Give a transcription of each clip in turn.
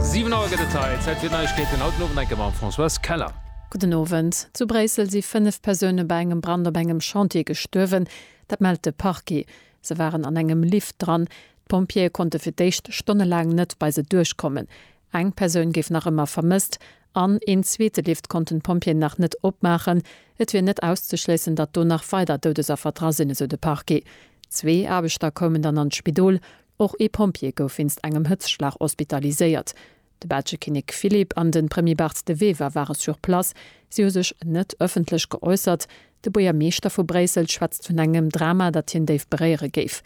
Siwen Auer gëtt et hei. Zäit fir d'Neiegkeeten, haut den Owend eng Kéier mam Françoise Keller. Gudden Owend. Zu Bréissel si fënnef Persoune bei engem Brand op engem Chantier gestuerwen. Dat mellt de Parquet. Se waren an engem Lift dran. D'Pompjeeë konnte fir d'éischt stonnelaang net bei se duerchkommen. Eng Persoun géif nach ëmmer vermësst an een zweete Lift konnten d'Pompjeeën nach net opmaachen. Et wier net auszeschléissen, datt do nach weider Doudesaffer dra sinn, esou de Parquet. Zwee Aarbechter koumen dann an d'Spidol. Och ee Pompjee gouf wéinst engem Hëtzschlag hospitaliséiert. De belsche Kinnek Philippe an de Premier Bart De Wever ware sur place. Si hu sech net ëffentlech geäussert. De Buergermeeschter vu Bréissel schwätzt vun engem Drama, dat hien déif beréiere géif.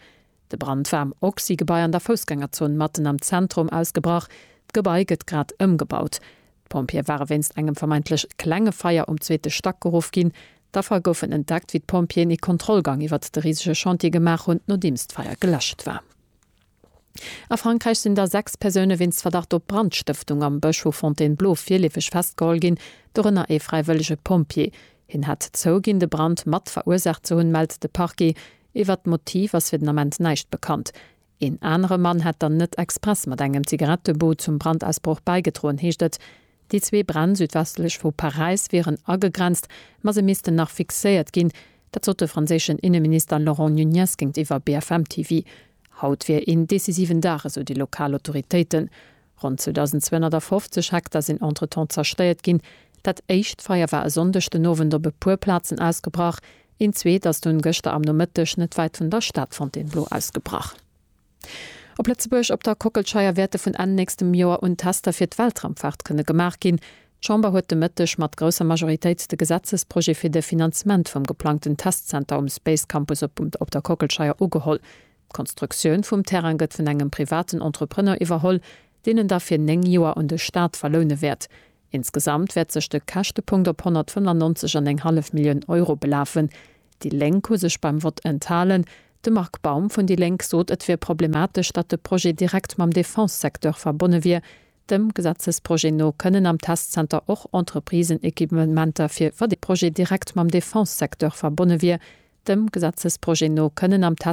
De Brand war am Oxy-Gebai an der Foussgängerzon matten am Zentrum ausgebrach. D'Gebai gëtt grad ëmgebaut. D'Pompjeeë ware wéinst engem vermeintlech klenge Feier um zweete Stack geruff ginn. D'Affer goufen entdeckt, wéi d'Pompjeeën ee Kontrollgang iwwert de risege Chantier gemaach hunn, nodeems d'Feier geläscht war. A Frankräich sinn da sechs Persoune wéinst Verdacht op Brandstëftung am Bësch vu Fontainebleau virleefeg festgeholl ginn, dorënner ee fräiwëllege Pompjee. Hien hätt zouginn, de Brand mat verursaacht ze hunn, mellt de Parquet. Iwwert d'Motiv ass fir den Ament näischt bekannt. Een anere Mann hätt dann net express mat engem Zigarettebot zum Brandausbroch bäigedroen, heescht et. Déi zwee Bränn südwestlech vu Paräis wieren agegrenzt, ma se missten nach fixéiert ginn. Dat sot de franséischen Inneminister Laurent Nunez géintiwwer BFM TV. Haut wier een decisiven Dag, esou déi lokal Autoritéiten. Ronn 2.250 Hektar sinn entretemps zerstéiert ginn. Dat éischt Feier war e Sonndeg den Owend op e puer Plazen ausgebrach, een zweet ass dunn gëschter am Nomëtteg net wäit vun der Stad Fontainebleau ausgebrach. Op Lëtzebuerg, op der Kockelscheier wäerte vun Enn nächstem Joer un Tester fir d'Weltraumfaart kënne gemaach ginn. D'Chamber huet de Mëtteg mat grousser Majoritéit de Gesetzesprojet fir de Finanzement vum geplangten Testzenter um Space Campus op der Kockelscheier ugeholl. D'Konstruktioun vum Terrain gëtt vun engem privaten Entrepreneur iwwerholl, deen en da fir 9 Joer un de Staat verloune wäert. Insgesamt wäert sech de Käschtepunkt op 195 an eng hallef Millioun Euro belafen. Déi Lénk hu sech beim Vott enthalen. De Marc Baum vun déi Lénk sot, et wier problematesch, datt de Projet direkt mam Defense-Secteur verbonne wier. Dem Gesetzesprojet no kënnen am Testzenter och Entreprisen Equipementer fir. Wa dee Projet direkt mam Defense-Secteur verbonne wier. Dem Gesetzesprojet no kënnen am.